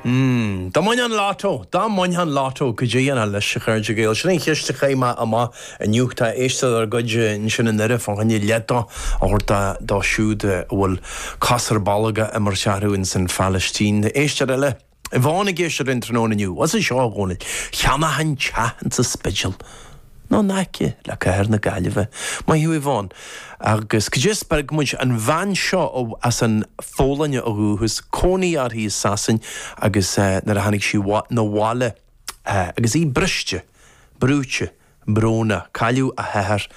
Mmm. Dá mbainfeá an Lotto, dá mbainfeá an Lotto cad é a dhéanfá leis, a chairde Gael. Sin an cheist a chaith mé amach inniu. Tá éisteoir dár gcuid ansin i nDoire fá choinne leath dó a thabhairt dóibh siúd a bhfuil cos ar bolg á imirt orthu in san Phalaistín. Éisteoir eile. Yvonne ag éisteacht linn tráthnóna inniu. As seo a Dhónaill. Cheannóinn teach in sa Spidéal. nó in aice le cathair na Gaillimhe. Maith thú, Yvonne. Agus cad é a spreag muid? An bhean seo as an Pholainn ó dhúchas, cónaí uirthi i Sasain agus nuair a tháinig sí na bhaile agus í briste, brúite, brónach. Cailleadh a hathair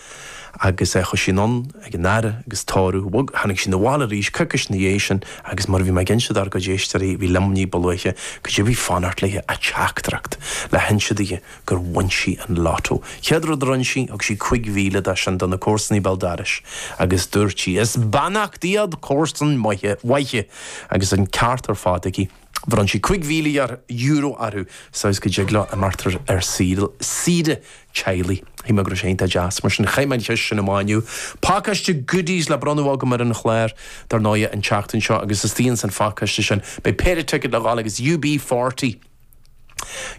agus chuaigh sí anonn ag an fhaire agus tórramh. But tháinig sí na bhaile arís coicís ina dhiaidh sin agus mar a bhí mé ag inse dár gcuid éisteoirí, a bhí liom ní ba luaithe, cad é a bhí ag fanacht léi ach teachtaireacht le hinse di? gur bhain sí an Lotto. Chéad rud a rinne sí, thug sí cuig mhíle de sin do na comharsanaigh béal doiris agus dúirt sí, Is beannacht iad comharsain mhaithe agus an ceart ar fad aici. Bhronn sí cuig mhíle euro orthu, sa dóigh is go dtig leo imeacht ar saoire teaghlaigh. Shíl mé go raibh sé iontach deas. Mar sin, chaith mé an cheist sin amach inniu. Pacáiste goodies le bronnadh agam ar an chlár, dar ndóighe, an tseachtain seo agus istigh ins an phacáiste sin beidh péire ticket le dhul agus UB40,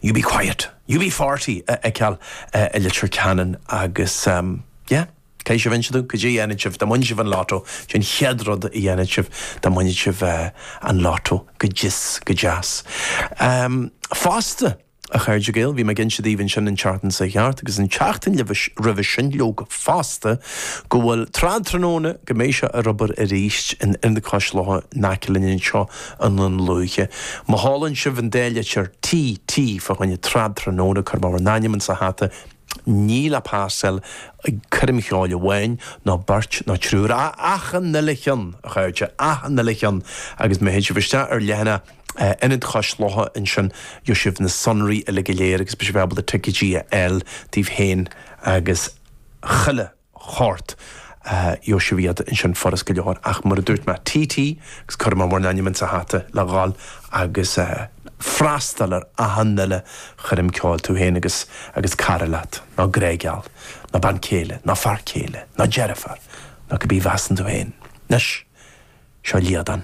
You be quiet! UB40 a fheiceáil i Leitir Ceanainn agus, yeah, caithfidh sibh inse dom cad é a dhéanfadh sibh dá mbainfeadh sibh an Lotto. Cad é an chéad rud a dhéanfadh sibh dá mbainfeadh sibh an Lotto, go deas, go deas. Fosta, a chairde Gael, bhí mé ag inse daoibh ansin an tseachtain seo a chuaigh thart agus an tseachtain roimhe sin, leoga, fosta, go bhfuil, Trad Tráthnóna, go mbeidh sé ar obair arís in Ionad Chois Locha in aice linn anseo i nDún Lúiche. Má sheolann sibh an dá litir T, T, fá choinne Trad Tráthnóna, cuir bhur n-ainm insa hata. Ní le freastal ar choirm cheoil amháin, ná beirt, ná triúr, ach achan uile cheann, a chairde, achan uile cheann! Agus má théann sibh isteach ar leathanach Ionad Chois Locha ansin, gheobhaidh sibh na sonraí uile go léir agus beidh sibh ábalta ticeidí a fháil daoibh féin agus chuile shórt. Gheobhaidh sibh iad ansin furast go leor. Ach mar a dúirt mé, TT, agus cuirfidh mé bhur n-ainm ins an hata le dhul agus freastal ar achan uile choirm ceoil, tú féin agus agus cara leat, nó grá geal, nó bean céile, nó fear céile, nó deirfiúr, nó cibé mheasann tú féin. Anois, seo Líadan.